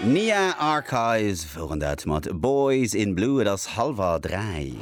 Nia Archives woren dat mat Boys in Blue. Et ass hallwer 3.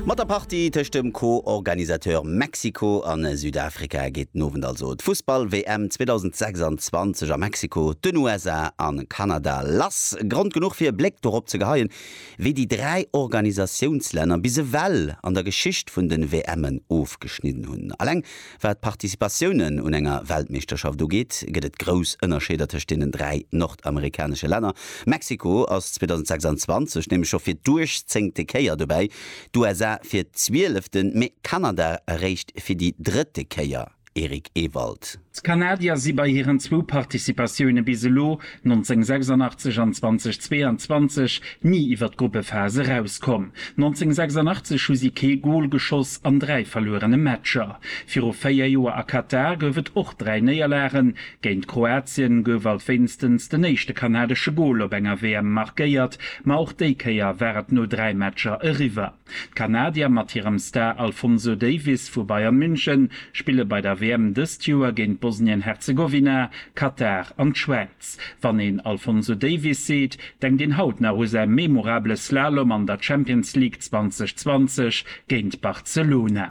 Mat der Partie tëscht dem Co-Organisateur Mexiko a Südafrika geet den Owend also d'Fussball-WM 2026 a Mexiko, den USA a Kanada lass. Grond genuch fir e Bléck dorop ze geheien, wéi déi 3 Organisatiounslänner bis ewell an der Geschicht vun den WMen ofgeschnidden hunn. Alleng Wat d'Participatiounen un enger Weltmeeschterschaft ugeet, gëtt et grouss Ënnerscheeder tëscht deenen dräi nordamerikanesche Länner. Mexiko ass 2026 nämlech scho fir d'duechzéngte Kéier dobäi, d'USA fir d'zwielefte, mee Kanada eréischt fir déi drëtte Kéier. Eric Ewald. D'Kanadier si bei hiren zwou Participatioune bis elo 1986 an 2022 ni iwwer d'Gruppephas erauskomm. 1986 hu si kee Gol geschoss an dräi verluerene Matcher. Viru véier Joer a Katar gouf et och dräi Néierlagen. Géint Kroatien gouf alt wéinstens den éischte kanadesche Gol op enger WM markéiert, ma och déi Kéier war et no dräi Matcher eriwwer. D'Kanadier mat hirem Star Alfonso Davies vu Bayern München spille bei der WM dëst Joer géint Bosnien-Herzegowina, Katar an d'Schwäiz. Wann een Alfonso Davies seet, denkt een haut nach u säi memorabele Slalom an der Champions League 2020 géint Barcelona.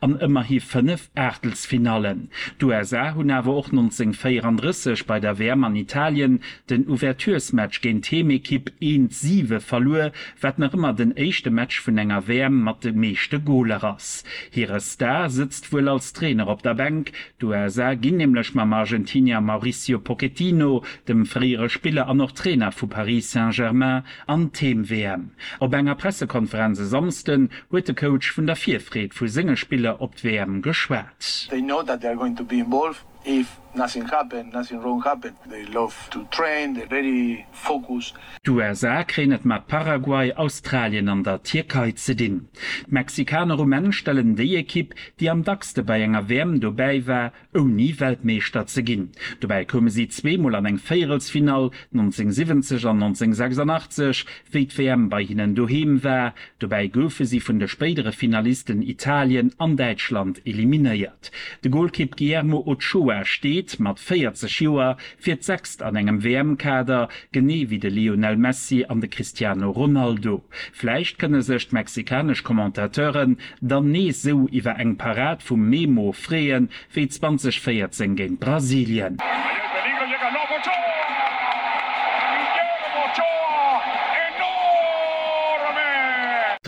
an ëmmerhi fënnef Aachtelsfinallen. D'USA hunn awer och 1934 bei der WM an Italien den Ouverturesmatch géint d'Heemekipp eens siwe verluer, wat nach ëmmer den éischte Match vun enger WM mat de meeschte Goler ass. Hire Star sëtzt wuel als Trainer op der Bänk, d'USA ginn nämlech mam Argentinier Mauricio Pochettino, dem fréiere Spiller an och Trainer vu Paris Saint-Germain, An d'Heem-WM. Op enger Pressekonferenz e Samsden huet de Coach vun der Virfreed vu senge Spiller op d'WM geschwat. They know that they are going to be involved if nothing happen, nothing wrong happen. They love to train, they're very focused. D'USA kréien et mat Paraguay, Australien an der Tierkei ze dinn. D'Mexikaner um Enn stellen déi Ekipp, déi am dackste bei enger WM dobäi war, ouni Weltmeeschter ze ginn. Dobäi koume si zweemol an eng Véierelsfinall, 1970 an 1986, wéi d'WM bei hinnen doheem war. Dobäi goufe si vun de spéidere Finalisten Italien an Däitschland eliminéiert. De Golkipp Guillermo Ochoa steet, mat 40 Joer, fir d'sechst an engem WM-Kader, genee wéi de Lionel Messi an de Cristiano Ronaldo. Vläicht kënne sech d'mexikanesch Commentateuren Dann nees sou iwwer eng Parad vum Memo freeën, wéi 2014 géint Brasilien.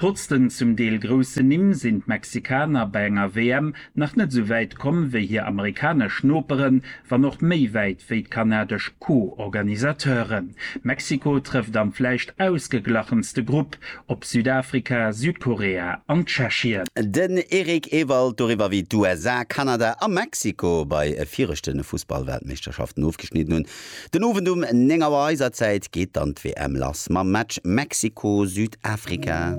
Trotz den zum Deel groussen Nimm sinn d'Mexikaner bei enger WM nach net sou wäit komm wéi hir amerikanesch Noperen, wann och méi wäit wéi d'kanadesch Co-Organisateuren. Mexiko trëfft am vläicht ausgeglachenste Grupp op Südafrika, Südkorea an Tschechien. Den Eric Ewald doriwwer, wéi d'USA, Kanada a Mexiko bei viregte Fussballweltmeeschterschaften ofgeschnidden hunn. Den Owend um 9 Auer eiser Zäit geet dann d'WM lass mam Match Mexiko-Südafrika.